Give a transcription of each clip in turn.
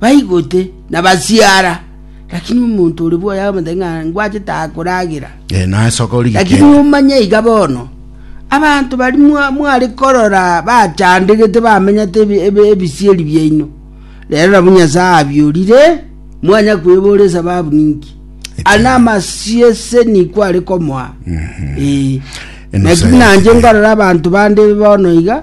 baigote na basiara lakini omonto ore bwoye akamata ng'a ngwachete akoragera Eh, naye soka ori lakini gikende. omanye iga bono abanto bari mwa- mware korora bachandegete bamenyete ebi- ebi- ebisieri biaino rero nabo nyasaye abiorire mwanya kwebora esababu ninki ana amasiese niku are komoa Eh. Enosa lakini nanje yake. nkarora abanto bande bono iga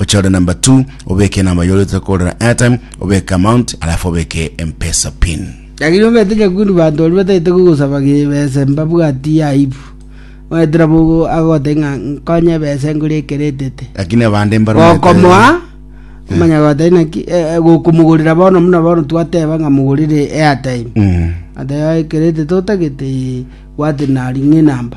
Ochore number two obeke enamba yore otete kogorera airtime obeke amount alafu obeke mpesa pin. Lakini omete nyakundu banto baria batagete kogosaba gebesa mbabwati aibu. Omanyete nabo ogo agogotebia ng'a nkonye ebesa ngure ekero etete. Lakini abande mbare omanyete- Gokomoa omanya gotari naki eh, eh, gokomogorera bono muna bono twateba ng'a mogorere airtime. Mm. Ateba ekero etete otagete eh, bwate nari ng'a enamba.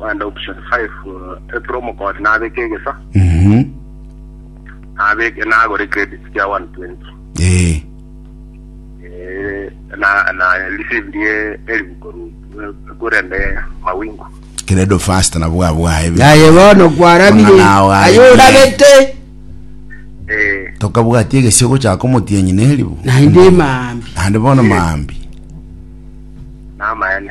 Wende option five, eh, April omokori nabeke egesa, Mhm. nabeke nagore credit kia 120. Eh. Eh, na na receive die elifu koru kurende mawingu. Credo fast na bwa bwae. yaye bono kwarabire Omwana wawe. aye orabete Eh, Tokabwatia egesio gochaka omotienyi neribu. naende mambi Ande bono mambi. namaene.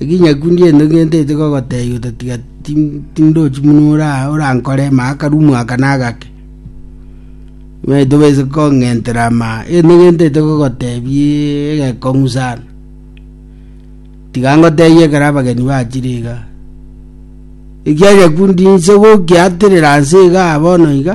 Eginyaku ndiento ngentete gogotebia ototiga tindochi buna ore aa orankore maa akaru omwaka na agake. Onye tobase kong'entera maa egento ngentete gogotebia egekong'u sana. Tiga ngotebie ekero abageni bachire iga. Ekianyakundi inse gokiaterera nse igaa bono iga.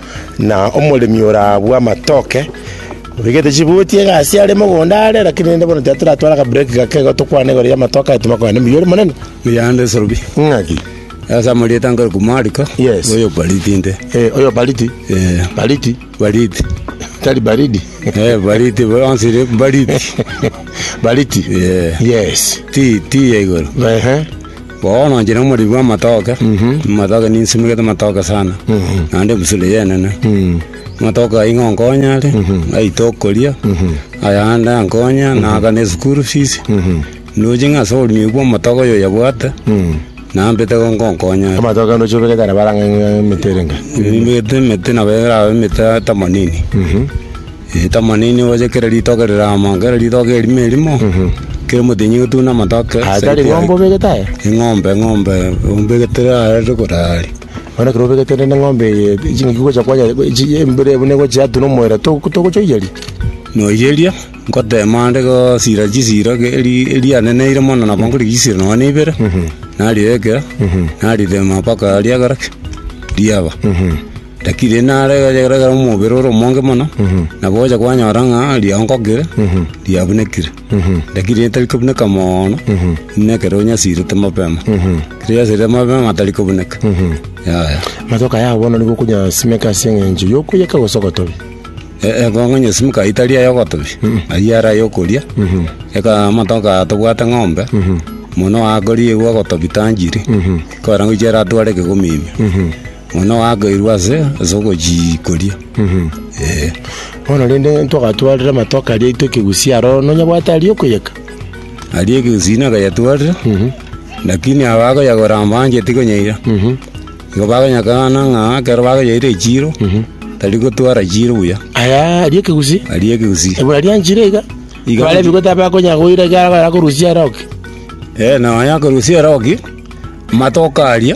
Na omoremi orabue amatoke, obegete chibuti egasi are mogondo are, lakini rende bono tatoratware akaburek gake igo tokwane igoro y'amatoke aye tomakwane mbuya ore monene. Oyande Sorobi, Ng'aki? ase amarieta nkorokwa Mariko, Yes. oyo Bariti inde. Eh, oyo baridi. Eh, Baridi. Bariti. Tari baridi. Eh, Bariti, bonsi ire Bariti. Baridi. Yeah. Yes. Ti, ti ya igoro. Ehe. Bono inche nomoriri bw'amatoke, amatoke ninsimegete amatoke sana, naende ebusuro eye enene. Amatoke ayio nigo ankonye are, naita okoria, ayande ankonye naagane eschool fees, ndoche ng'a ase oboremi obwo bw'amatoke oyo oyabwate, nambete igo nkonkonye are. Amatoke ande oche obegete ara barang'ang'e emete ere ingae? Nimegete emete nabo erabe emete themanini. Ritamani nigo oche kera ritoke rirama, kera ritoke erimo erimo, kera omotenyi ogetune amatoke. Aye side tari ng'ombe yake. obegete aye Eng'ombe, eng'ombe, ombegete are rikorari. bono ekero obegete rende ng'ombe eye chingaki gocha kwanya chi- embere buna egochi yatuna omoera to- togochoiyeri Noyeria, ngotema ande gosira chisira ge- eri- erianeneire mono nabo nkorigia chisira nonye na ibere, narirekera, narirema mpaka riagera ki? Riaba. Lakini rende naregere omobere ore omonge mono, nabo ogocha kwanyora ng'a riankokire, riabunekire. Lakini rende tari kobuneka mono, buna ekero onyasirete mapema. Ekero oyasirete mapema tari kobuneka. Yaya. Amatoke ayao bono nigo okonyasimeka ase eng'encho yokoiyeka gose ogotobi. E- Egongo nyesimeka ayio tari ay'ogotobi, ayio are ay'okoria. Eka amatoke aya tobwate ng'ombe, mono oakoriigwa ogotobi tanchiri, ekero arangoichia eratware ekegomimia. Ng'ina oagairwe ase ase ogochiikoria. Bono rende ntwagatwarire amatoke aria aitwe ekegusia aroro, nonya bwate aria okoyeka? Aria ekegusia nagayatwarire, lakini aba bagoyagora mbancheti konyaira. Igo bagonyakana ng'a ekero bakonyaire echiiro, tari gotwara chiiro buya. Aya aria ekegusia? Aria ekegusia. Ebura rianchire iga? Iga- Barebigwe tabakonya goira ekiagera bakorusia ere oke. Ee, na onye akorusia ere oke, amatoke aria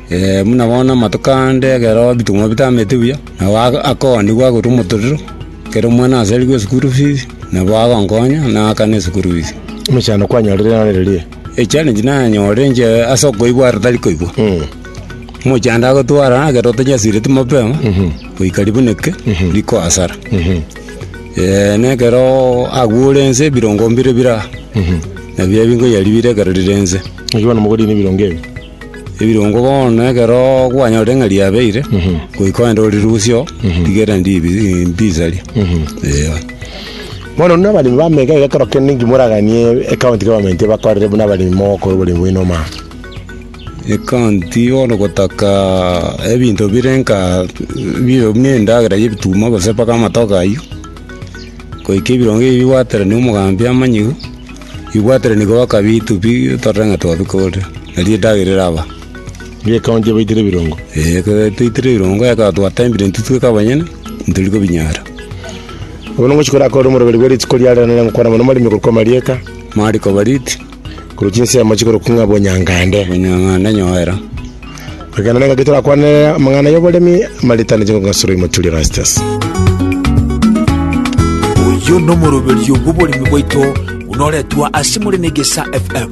Ee, buna bono amatuko ande ekero ebitong'wa bitamete buya, nabo aka- akoonigwa agotwa omotorero, ekero omwana asarigwe eschool fees, nabo agonkonya naakane eschool fees. Emechando kwanyorire naro eria? Echallenge nanyorire inche ase okoigwa aro tari koigwa, omochando agotwara ekero otonyasireti mapema, goika ribuneke riko hasara. Ee, na ekeroo agwo ore nse ebirongo mbire bire aa, nabiria binkoyaribire ekero rire nse. Naki bono mogorine ebirongo ebi. Ebirongo bono ekero kwanyorire ng'a riabeire, goika ogende orirusie oo, rigere ndibi ndisarie. Eeh. Bono buna abaremi ba mega iga ekero kende inki moraganie ecounty government ebakorere buna abaremi mogokora oboremi bwaino omaya? Ecounty bono gotaka ebinto bire nka bire buna endagera ya ebituma gose mpaka amatoke ayio, goika ebirongo ebi bigwaterania omogambi amanyiwu. Ibwatire nigo bakabi itubi torore ng'a twabika ore, erio edagera eraba. Erio ekaba ntiabaitire ebirongo. Ee, ekero taitire ebirongo ekaba twatembire intwe tweka abanyene, ntori kobinyara. Bono ngochia korakore omoroberi bwe rituko riarero nere ngokwana mono marimi korokwa marieka, Mariko Bariti, korwa chinsemo chikorokwa ng'a Bonyangande. Bonyangande nyoera. Ekeene nengaki torakwane amang'ana y'oboremi amaritane ching'ogasiro y'omoturi Erastus. Oyo nomoroberio bw'oboremi bwaito buna oretwa ase more na Egesa FM.